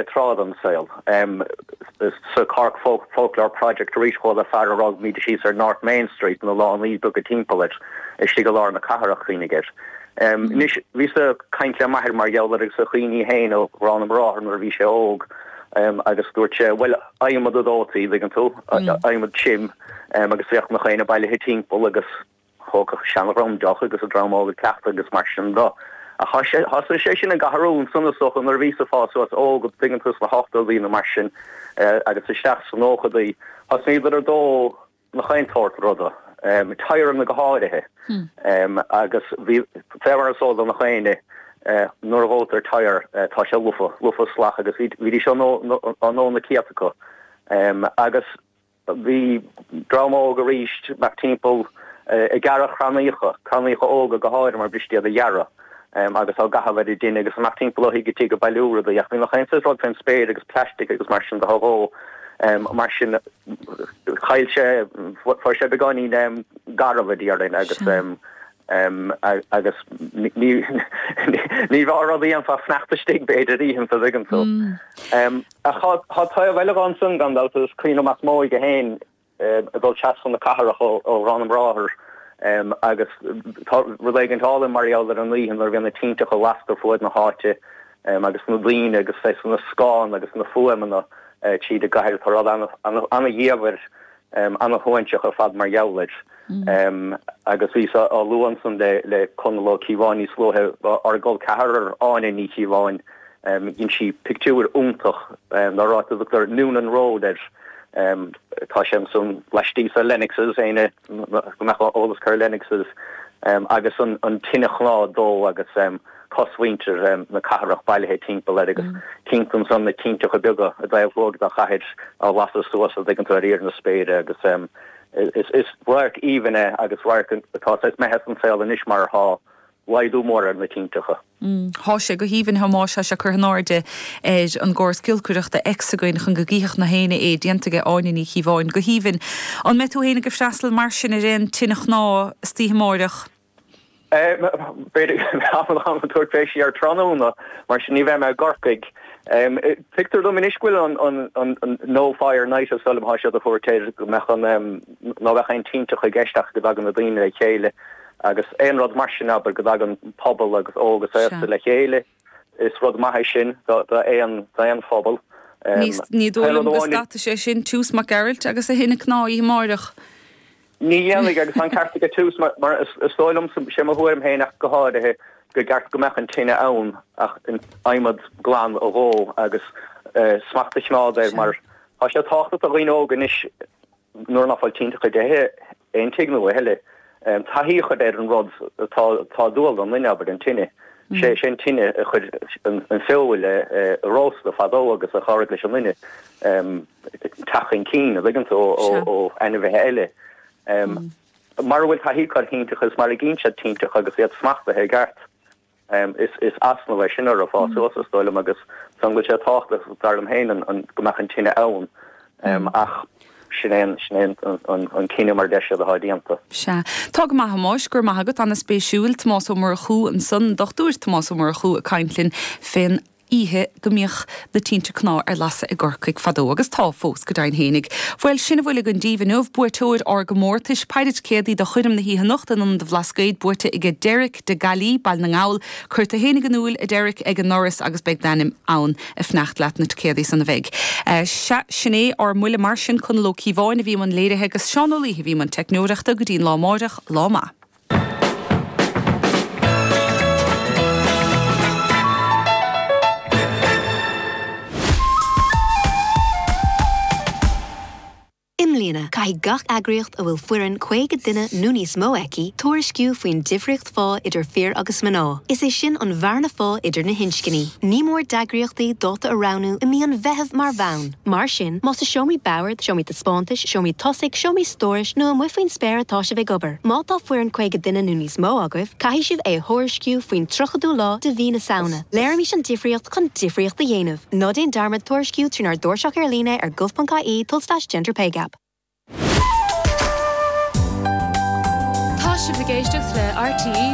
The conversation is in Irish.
tráth den saol. Sa Cork Folklore Project arís chuala fear a raibh míde síos ar North Main Street na lánaí beaga timpeall air istigh i lár na cathrach, chuimhnigh air. Anois, bhíos ag caint le m'athair mar gheall air agus a chuimhní féin ar Gharrán na mBráthar nuair a bhí sé óg agus dúirt sé, bhuel, adhmad a dhóití, dtuigeann tú, adhmad trim agus bhíodh nach éinne bailithe timpeall agus. Thógadh an seandream deoch agus an dream óg ag cleachtadh agus mar sin de. Ach thosaigh sé sin ag athrú, ansan is dócha nuair a bhíosa ag fás suas óg, an dtuigeann tú, sna hochtódaí nó mar sin, agus isteach sna nóchadaí, thosnaíodar ag dó na chaon tsórt ruda, tyreanna go háirithe, agus bhí, fé mar is eol do na héinne, nuair a dhóitear tyre, tá sé lofa, lofa, salach, agus bhídís á ndó, á ndó na céadta acu, agus. Bhí dream óg arís ag imeacht timpeall ag gearradh crannaíocha, crannaíocha óga go háirithe mar b'fhuiriste iad a ghearradh agus á gcaitheamh ar an dtine agus ag imeacht timpeall ó thigh go tigh ag bailiú rudaí. Ach bhí nach aon saghas rud fén spéir agus plaistic agus mar sin de á dhó. Mar sin chaill sé, fuair sé beagáinín garbh a déarfainn agus agus ní raibh a rud a dhéanfá sneachta istigh b'fhéidir oícheanta, an dtuigeann tú. Ach tá taobh eile dhó ansin, gan dabht, agus cuimhní as m'óige féin ag dul trasna na cathrach ó Gharrán na mBráthar agus tá rud éigin álainn mar gheall ar an oíche nuair a bhíonn na tinteacha lasta ar fuaid na háite agus na daoine agus na scáileanna agus na fuaimeanna tríd an gcathair. Tá rud ana-dhiamhair an-shuaithinseach ar fad mar gheall air agus bhíos á lua ansan le Conall Ó Cíobháin níos luaithe ár gcol ceathrar, Áine Ní Chíobháin, dhein sí pictiúr iontach ar áit a dtugtar Noonan Road air, tá sé ansan laistíos de Lennox's, éinne go mbeadh eolas acu ar Lennox's, agus an tine chnámh á dó agus. cosmhuintir na cathrach bailithe timpeall air agus chíonn tú ansan na tinteacha beaga i dtaobh thuaidh den chathair á lasadh suas an dtuigeann tú ar íor na spéire agus is radharc aoibhinn é agus radharc atá saghas imithe as an saol anois mar tá laghdú mór ar na tinteacha. Thá sé go haoibhinn, a Thomáis, thá sé curtha in airde ar an gcóras giolcaireachta X againn chun go gcífeadh na h-éinne é, déanta aige Áine Ní Chíobháin. Go haoibhinn. An mbeidh tú fhéin ag freastal mar sin ar aon tine chnámh istoíche amáireach? B'fhéidir go mbeadh ach táim ag tabhairt fé siar tráthnóna, mar sin ní bheidh mé i gCorcaigh. Tuigtear dom anois go bhfuil an No Fire Night is dóigh liom atá siad á thabhairt air, go mbeadh an, ná bheadh aon tinteacha i gceist ach go dtagann na daoine le chéile agus aon rud mar sin, abair, go dtagann pobal agus óg is aosta le chéile. Is rud maith é sin d'aon phobal. Ní dóigh liom go stadfaidh sé sin Toose Mac Gearailt agus a thine chnámh oíche amáireach. Ní dhéanfaidh, agus tá an ceart aige Toose, mar is dóigh liom, sé mo thuairim féin ach go háirithe, gur ceart go mbeadh an tine ann ach adhmad glan a dhó agus smacht a chimeád air mar tá sé tábhachtach do dhaoine óga anois, Nuair nach bhfuil tinteacha i dtithe, aon tigh nó eile, taithí a chur ar an rud atá atá dual don duine, abair, an tine, sé sé an tine a chuir an fheoil á róstadh fadó agus a chabhraigh leis an nduine teacht chun cinn, a' dtuigeann tú, ó ainmhithe eile. Mara bhfuil taithí curtha ar thinteacha is mara gcíonn siad tinteacha agus iad smachtaithe i gceart. Is easnamh é sin ar a bhfás suas, is dóigh liom, agus ansan go bhfuil sé tábhachtach, dar liom féin, go mbeadh an tine ann, ach sin é an cinneadh mar a deir siad atá déanta. Sea. Tá go maith, Thomáis. Go raibh maith agat. Ana-spéisiúil. Tomás Ó Murchú ansan, an Dr Tomás Ó Murchú ag caint linn fén oíche go mbíodh na tinte cnámh ar lasadh i gCorcaigh fadó, agus tá fós, go deimhin féinig. Bhuel, sin a bhfuil againn díbh inniu, buaiteoir ár gcomórtais, péire ticéadaí do choirm na hoíche anocht in Ionad an Bhlascaoid, buaite aige Derek de Gaillí, Baile na nGall. Cuir tú fhéinig in iúl, a Derek, ag an ndoras agus beidh d'ainm ann, ag fanacht leat na ticéadaí san a bheidh. Sea, sin é ár mbuille mar sin. Conall Ó Cíobháin a bhí i mbun léirithe agus Seán Ó Laoithe a bhí i mbun teicneoireachta. Go dtí an lá amáireach, lá maith. I mbliana, caithfidh gach eagraíocht a bhfuil foireann 50 duine nó níos mó aici tuairisciú faoin difríocht phá idir fir agus mná, is é sin an bhearna phá idir na hinscní. Ní mór d'eagraíochtaí dáta a roghnú i mí an Mheithimh mar bhonn. Mar sin, más i seomraí boird, seomraí taispeántais, seomraí tosaigh, seomraí stórais nó amuigh faoin spéir atá sibh ag obair, má tá foireann 50 duine nó níos mó agaibh, caithfidh sibh é a thuairisciú faoin 30ú lá de mhí na Samhna. Léirímis an difríocht chun difríocht a dhéanamh! Ná déan dearmad tuairisciú trínár dtairseach ar líne ar gov.ie tulslais gender-pay-gap. Tá sibh ag éisteacht le RTÉ